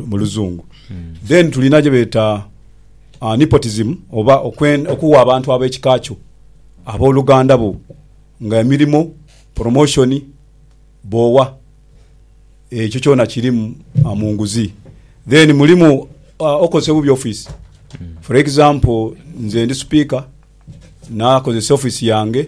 mu luzungu then tulina gyebeeta uh, nepotism oba okuwa abantu ab'ekika kyo abooluganda bo nga emirimu promotion boowa ekyo kyona kirimu uh, mu nguzi then mulimu uh, okozesa obubi office for example nze ndi speaker nakozesa office yange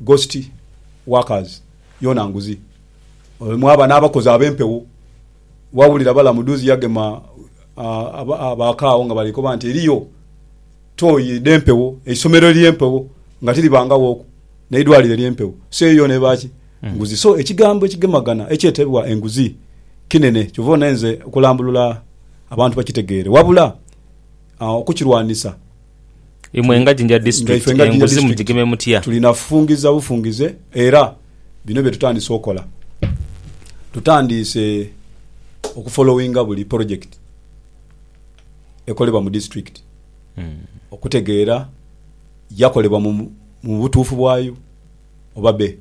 Ghost workers yoona nguzi oyo mwaba n'abakozi ab'empewo. Wawulira Balamu duuzi yagema abaaka agho nga bali koba nti eriyo tooyi dh'empewo, eisomero ery'empewo nga tiriba ngaghooku, n'eidwaliro ery'empewo. So eyo yoona eba ki? Nguzi. So ekigambo ekigemagana ekyetebwa enguzi kinene. Kyova ona enze okulambulula abantu bakitegeere wabula okukirwanisa. Imwe nga Jinja District enguzi mujigeme mutya? Tulina kufungiza bufungize era bino bye tutandise okola. Tutandiise okufolowinga buli polojekiti ekolebwa mu disitulikiti okutegeera yakolebwa mu butuufu bwayo oba be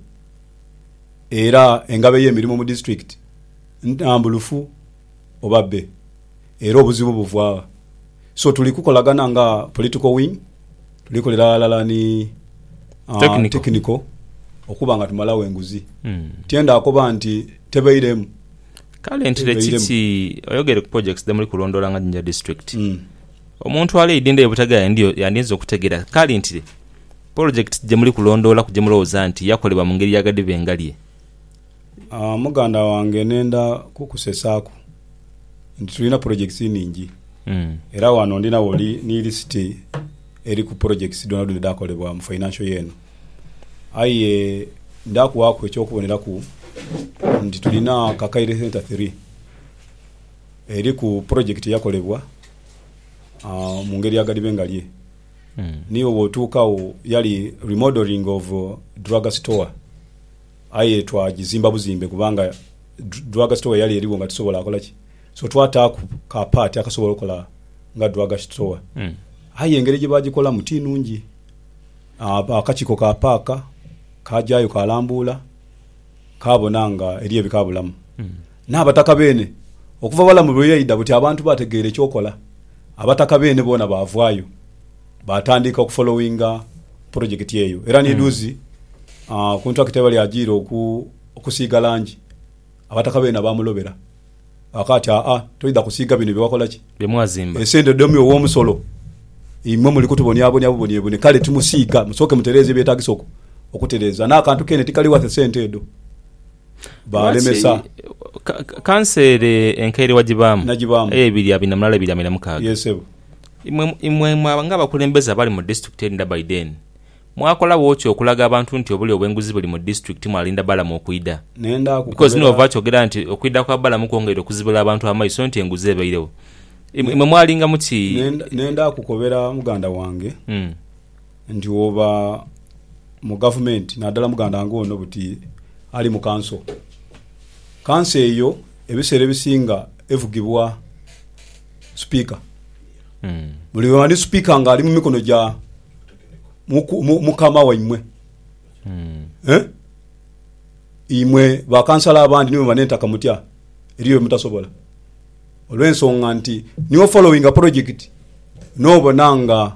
era engabo ey'emirimo mu disitulikiti ntambulufu oba be. era obuzibu buva gha? So tuli kukolagana nga political wing, tuli kolera ghalala ni technical okuba nga tumalagho enguzi. Tienda akoba nti tebeiremu. Kale ntire kiki oyogere ku projects dhemuli kulondoola nga Jinja District. Omuntu ali eidhindha ye Butagala yandinze okutegera kale ntire projects gyemuli kulondoolaku gyemulowooza nti yakolebwa mu ngeri ya ghadhiba engalye. Muganda wange nenda kukusesaaku nti tulina pulojekiti nhingi era wano ndinagho ni lisiti eriku pulojekiti dhonadhona edhaakolebwa mu fainansho ye eno. Aye nda kuwaaku eky'okuboneraku nti tulina Kakaire Centre Three eriku pulojekiti eyakolebwa mu ngeri ya ghadibe ngalye. Niwo bw'otuuka agho yali remodelling of drug store. Aye twagizimba buzimbe kubanga drug store yali eriwo nga tisobola kola ki so twataaku ka part akasobola okola nga drug store aye engeri gyebagikolamu ti nungi. Akakiiko ka paaka kajayo kalambuula kabona nga eriyo ebikabulamu. N'abataka beene, okuva Balamu lwe yaidha buti abantu baategeera eky'okola. Abataka beene boona baavaayo, baatandika okufolowinga pulojekiti eyo. Era ni dhuuzi ku ntulakita ghebali ajiira okusiiga langi, abataka beene abaamulobera ghaka ati, Aa, toidha kusiiga bino bye wakola ki? Bye mwazimba. Esente dhomi ow'omusolo, imwe muli kutubonyabonya bubonyebone. Kale timusiiga, musooke mutereeze ebyetaagisa okutereeza. N'akantu keene tikali wathe sente edho. baalemesa. Kansa ere enkaire wagibaamu ebiri abiri na mulala ebiri abiri na mukaaga. Imwe ng'abakulembeze abali mu disitulikiti eri Ndaba Ideen, mwakolagho ki okulaga abantu nti obulya obw'enguzi buli mu disitulikiti mwalinda Balamu okwidha? Because ni wova kyogera nti okwidha kwa Balamu kwongeire okuzibula abantu amaiso nti enguzi ebairegho. Imwe mwalingamu ki? Nenda kukobera muganda wange. Nti woba mu gavumenti nadala muganda nga ono buti ali mu kanso, kanso eyo ebiseera ebisinga evugibwa supika. Buli lwemala ni supika nga ali mu mikono gya mukama waimwe eh? Imwe ba kansala abandi ni bwemala entaka mutya eriyo byemutasobola olwensonga nti niwo following a project nobona nga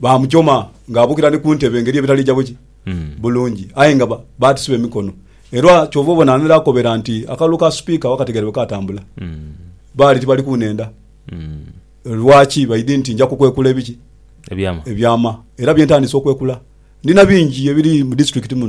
Baamujoma ng'abukira ni ku ntebe engeri ebitali gya buki bulungi, aye nga baatisiba emikono. Era kyova obona ani akobera nti akalulu ka Sipiika wakategeera bwe kaatambula. Baali tibali kunhenda. Lwaki? Baidhi nti nja kukwekula ebiki? Ebyama. Era bye ntandise okwekula. Ndina bingi ebiri mu disiturikiti muno.